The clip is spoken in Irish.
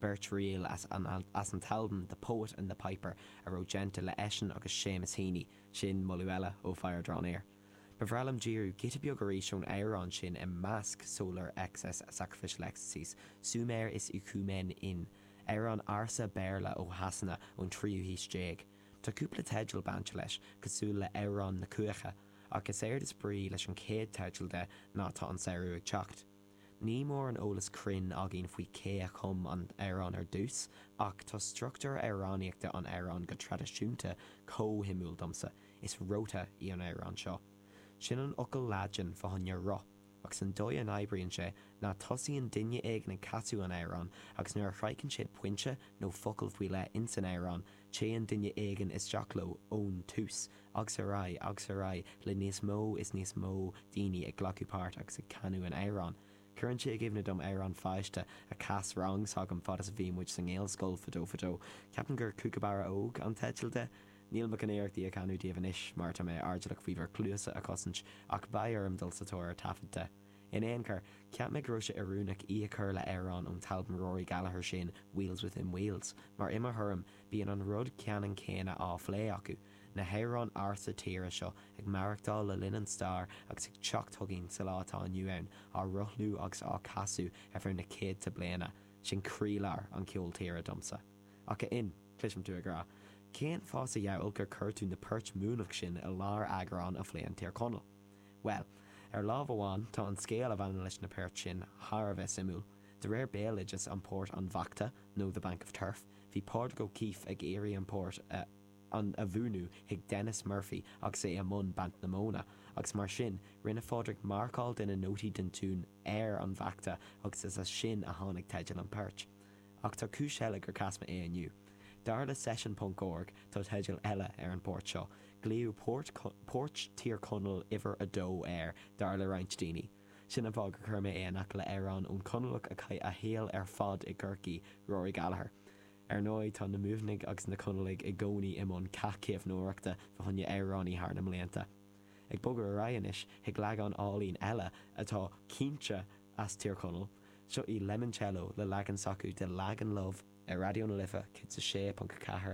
beirt ríl as an as an t-albam The Poet and the Piper a raibh déanta le eisean agus Seamus Heaney, sin moladh eile ó Fire Draw Near. Ba bhreá liom díriú giota beag arís ón amhrán sin i measc Solar Excess, Sacrificial Ecstasies, Sumer Is Icumen In, amhrán ársa Béarla ó Shasana ón tríú haois déag. Tá cúpla teideal bainte leis, cosúil le Amhrán na Cuaiche, ach is éard is brí leis an chéad teideal de ná Tá an Samhradh ag Teacht. Níl mórán eolas cruinn againn faoi cé a chum an t-amhrán ar dtús, ach tá struchtúr amhránaíochta an amhráin go traidisiúnta chomh suimiúil domsa, is rota í an amhrán seo. Sin an fhocal Laidin fá choinne roth, agus an dóigh a n-oibríonn sé ná tosaíonn duine éigin ag casadh an amhráin agus nuair a shroicheann siad pointe nó focal faoi leith insan amhrán, téann duine éigin isteach leo ón tús agus ar aghaidh agus ar aghaidh le níos mó is níos mó daoine ag glacadh páirt agus ag canadh an amhráin. Cuireann sé i gcuimhne dom amhrán pháiste a chas rang s'agam fad is a bhí muid sa nGaelscoil fadó fadó, ceapaim gur 'Cúcabarra Óg' an teideal de. Níl mé chun iarracht í a chanadh daoibh anois mar tá mé airdeallach faoi bhur gcluasa a chosaint ach beidh orm dul sa tóir ar thaifead de. In aon chor, cheap mé go raibh sé oiriúnach í a chur le amhrán ón t-albam Rory Gallagher sin, Wheels Within Wheels, mar i mo thuairim, bíonn an rud ceanann céanna á phlé acu, na hamhráin ársa tíre seo ag maireachtáil le linn an stair agus ag teacht chugainn sa lá atá inniu ann, á rothlú agus á casadh ar feadh na céadta bliana, sin croílár an cheoil tíre domsa. Ach a Fhinn, cloisim tú ag rá, cén fáth sa dhiabhal gur chuir tú na poirt Muimhneach sin i lár eagrán a phléann Tír Chonaill? Bhuel, ar láimh amháin, tá an scéal a bhaineann leis na poirt sin thar a bheith suimiúil. De réir béaloideas an Port an Bhachta, nó The Bank of Turf, bhí Pádraig O'Keeffe ag iarraidh an port a an a mhúineadh chuig Denis Murphy agus é i mbun baint na móna, agus mar sin, rinne Phádraig marcáil de na nótaí den tiún ar an bhachta agus is as sin a tháinig teideal an phoirt. Ach tá cúis eile gur chas mé é inniu. Dar le session ponc org tá teideal eile ar an bport seo. Glaodh Port, Port Thír Chonaill uimhir a dó air, dar le roinnt daoine. Sin an fáth gur chuir mé é in aice le amhrán ón Conallach a chaith a shaol ar fad i gCorcaigh, Rory Gallagher. Ar ndóigh tá na Muimhnigh agus na Conallaigh i gcónaí i mbun cath caomhnóireachta fá choinne amhránaí thar na mblianta. Ag bogadh ar aghaidh anois chuig leagán álainn eile atá cinnte as Tír Chonaill, seo í Lemoncello le leagan s'acu de Lagan Love ar Raidió na Life 106.4